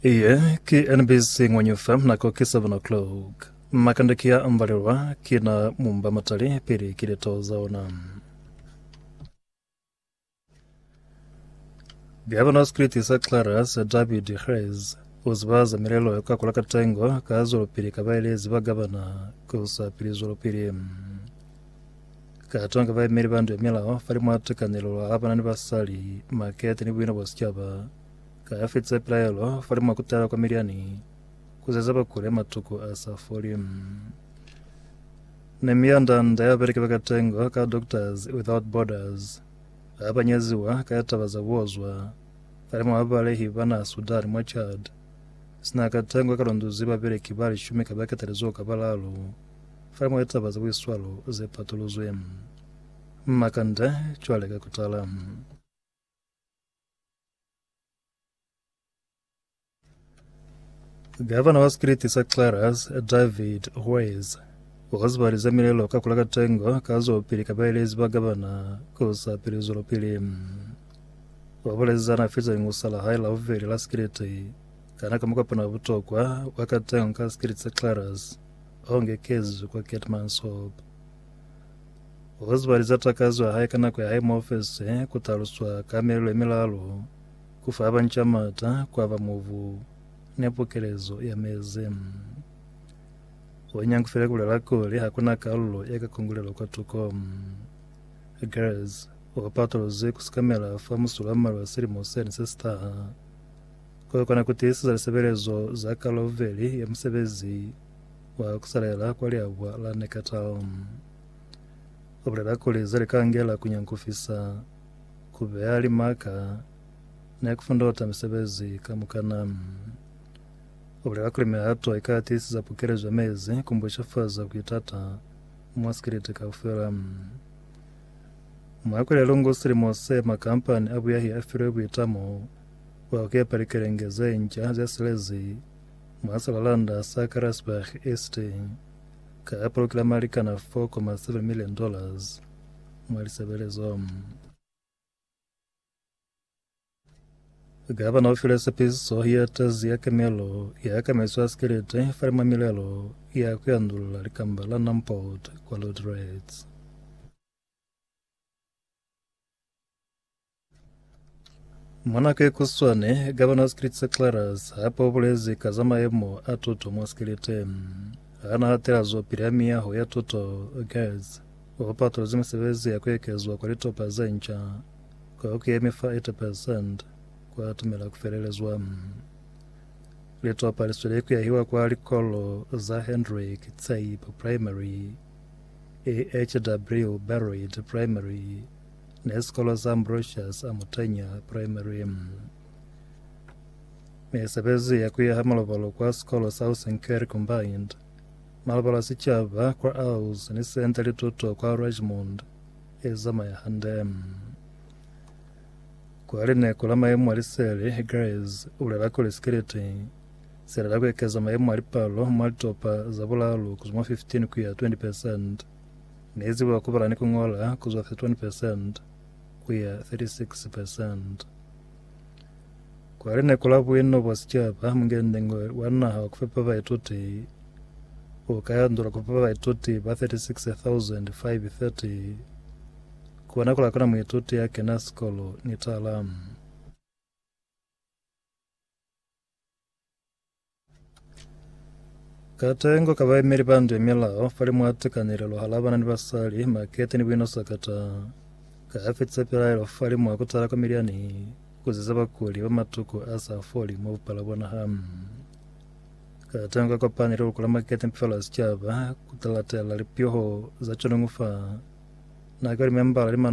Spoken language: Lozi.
Iye ki NBC Ngwanyufa nako ki 7 o'clock. Makande ki ya ambalelwa ki na mumba matali pili ki litaho za ona. Bya bona Spiriti sa Clara sa David Hrez uziba za milelo ka kula katengo ka zwelopili ka baelezi ba gabana ku sa pili zwelopili. Katonga baemeli ba ndu ya milao falimwa litekanelo la bana ni basali, makete ni buina bwa sicaba. Ka ya fitisa pilaelo falimwa kutala kwa Midiani kuzeza bakule matuku a sa foli. Nemia ndanda ya beleki bakatengo ka Doctors Without Borders ba banyeziwa ka ya taba za buozwa falimwa babalehi ba naha Sudan mwa Chad. Sina katengo ka lunduzi babeleki ba lishumi ka baketalizoho ka balalu. Fa mwa litaba za buiswalo ze patuluzwi, m'ma kanda cwale ka ku tala. Gavana wa sikiliti sa Clarus, David Hues, u zibalize milelo ka kula katengo ka zwelopili ka baelezi ba gavana ku sa pili zwelopili. Wa bulezi ana fitsa lingusa la hae la bubeli la sikiliti kana ka mukopano wa butokwa wa katengo ka sikiliti sa Clarus. Honge Kezu kwa Keetmanshoop. Oswald za takazo ya hae ka nako ya hae mo ofese ku taluswa ka melelo ye milalu, ku fa banca mata, ku aba mubu, ni pukelezo ya mezi. O nyangufile ku bulela kuli ha ku na kalulo ye ka kongulelwa kwa tuko. Gers o patolozwi ku sikamela fa musulo wa mmalwa silimo sene se si taha. Ku kona ku tiiseza lisebelezo za Kaloveli ya musebezi wa ku salela kwa liabwa la Neckartal. U bulela kuli ze li ka ngela ku nyankufisa, ku beya limaka, ni ku fundota misebezi kamukana. U bulela kuli mihato i ka tiiseza pukelezo ya mezi ku mbucafaza ku itata mwa sikiliti kaufela. Mwa kweli ya lungu silimo se, makampani a buyahi a filwe buitamo wa kepa likelenge ze nca ze silezi mwa silalanda sa Karasburg East ka poloki la Malikana 4.7 million dollars mwa lisebelezo. Gavana u file sepiso ye tezi ya kemelo ya kamaiso ya sikiliti fa limwa milelo ya ku yandulula likamba la Numport kwa Lordrats. Mwanake Kuswane, gavana wa Skillet sa Clarence, hapa o bulezi ka za maemo a tuto mwa Skillet. Ha na hatela zwapili ha miyaho ya tuto, GERDS, o patolozi misebezi ya ku ekezwa kwa litopa ze nca kwa ku yemi fa 80% kwa atumela ku felelezwa. Litopa li sweli ku yahiwa kwa likolo za Hendrick Tsaipa Primary, EHW Barroyd Primary, Ne sikolo sa Ambrosius Amutanya Primary M. Mesebezi ya kuyaha malobalo kwa sikolo sa Housing Care Combined, malobalo a sicaba kwa Auz ni Senta Lituto kwa Rajmond ezamaya hande. Kwa lineko la maemo a liseli, Grace ulela kuli sikiliti silela kuekeza maemo a lipalo mwa litopa za bulalu kuzwa mwa 15 kuya 20%. Ne ziba ku bala ni ku ñola ku zwa 31 percent ku ya 36 percent. Kwa lineku la buino bwa sicaba, mungendengo wa naha wa ku fepa baituti u ka yandula ku fepa baituti ba 36,530. Kona ku lakona muituti ya kena sikolo ni talamu. Katengo ka baemeli ba ndwe milao pali mwa tekanelelo hala bana ni basali makete ni buino sakata ka fetisa pilaelo fali mwa kutala kwa miliani kuziza bakuli ba matuku a sa foli mo bupala bona ham katengo ka kopani le lukula makete mpifalo ya sicaba kutalatela lipyoho za chonongufa na ka limembala limano